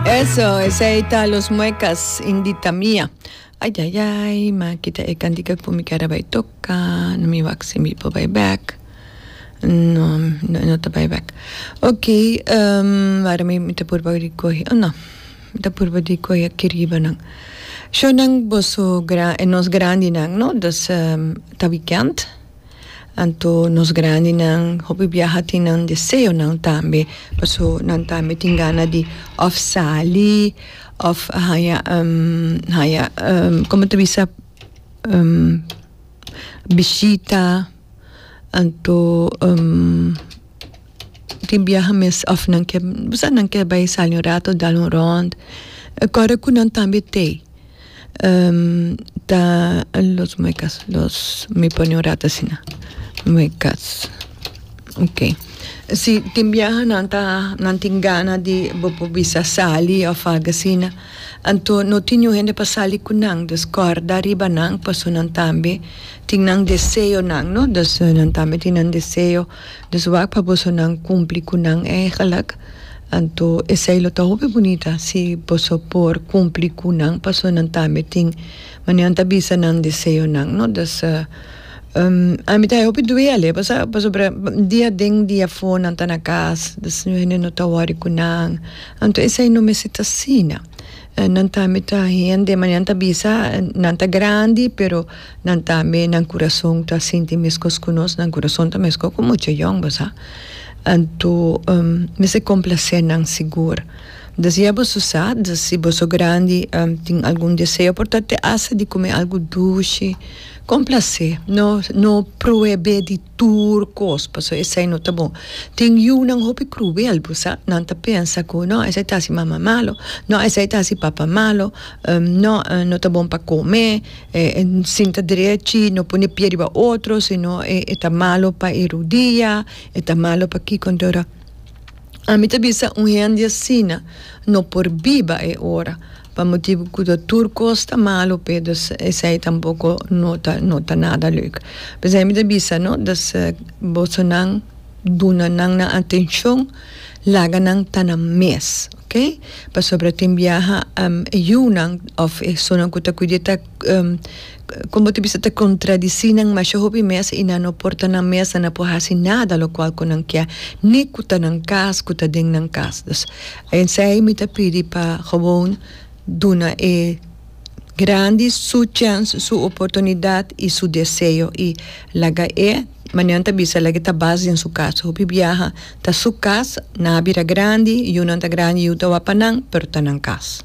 Eso, esey ta Los Muecas, Indita Mia. Ay, ay, ay, ma kita e cantica cu mi keda bay toca. No mi wak si mi por bay back. No, no, no ta bay back. Ok, um, wara mi, mi ta purba di coge, oh no, mi ta purba di coge aki riba nan. Shownan boso, gran, e nos grandinan, no? Dus, um, ta weekend. Anto nos grandinan, hopi biaha tin nan deseonan tambe, paso nan tambe tin gana di òf sali, òf haña haña komo ta bisa? bishita, anto tin biaha mes òf nan ke, bisa nan ke bai sali un rato dal un rònt, kòrda ku nan tambe tei ta los muecas los mi pone un rato asina muecas okay si tin biaha nan ta nan tin gana di bo por bisa sali of algo asina anto no tin niun hende pa sali cu nan dus corda ariba nan pasobra nan tambe tin nan deseonan no nan tambe tin nan deseo. Dus wak pa boso nan cumpli cu nan eigenlijk, anto esey lo ta hopi bunita si boso por cumpli cu nan paso nan tambe tin maneran ta bisa nan deseonan, no? Dus, ami ta hopi duele paso pasobra dia den dia fo nan ta na cas, dus nu hende no ta worry cu nan, anto esey no mester ta asina. Nan tambe ta hende, manera nan ta bisa, nan ta grandi, pero nan tambe nan kurason ta sinti meskos ku nos, nan kurason ta meskos ku mucha yòn, bo sa. Anto, mester komplasé nan sigur. Di asigua boso sa, di si boso grandi tin algun deseo por ta te hasta di kume algu dushi, komplasé, no, no prohebé di. tur cos pasobra esey no ta bon tin yunan hopi cruel bo sa nan ta pensa cu no esey ta haci mama malo no esey ta haci papa malo no no ta bon pa come sinta drechi no pone e pie riba otro sino e ta malo pa e rodia e ta malo pa kico enton ora Ami ta bisa un hende asina no por biba e ora, pa motibu cu ta tur cos ta malo p'e, dus esey tampoco no ta no ta nada leuk. P'esey mi ta bisa no, dus bosonan duna nan nan atencion, laga nan ta nan mes, ok? Pasobra tin biaha e yunan of e personanan cu ta cuid'e ta Kon bo ta bisa ta kontradisí nan? Masha hopi mes i nan no por ta nan mes, nan no por hasi nada lokual ku nan ke, ni ku ta nan kas, ku ta den nan kas. Dus, esei mi ta pidi pa gewoon duna e grandi su chèns, su oportunidat i su deseo i laga e, manera nan ta bisa, laga e tabas den su kas. Hopi biaha ta su kas, nan a bira grandi, yunan ta grandi, yu ta wak pa nan, pero ta nan kas.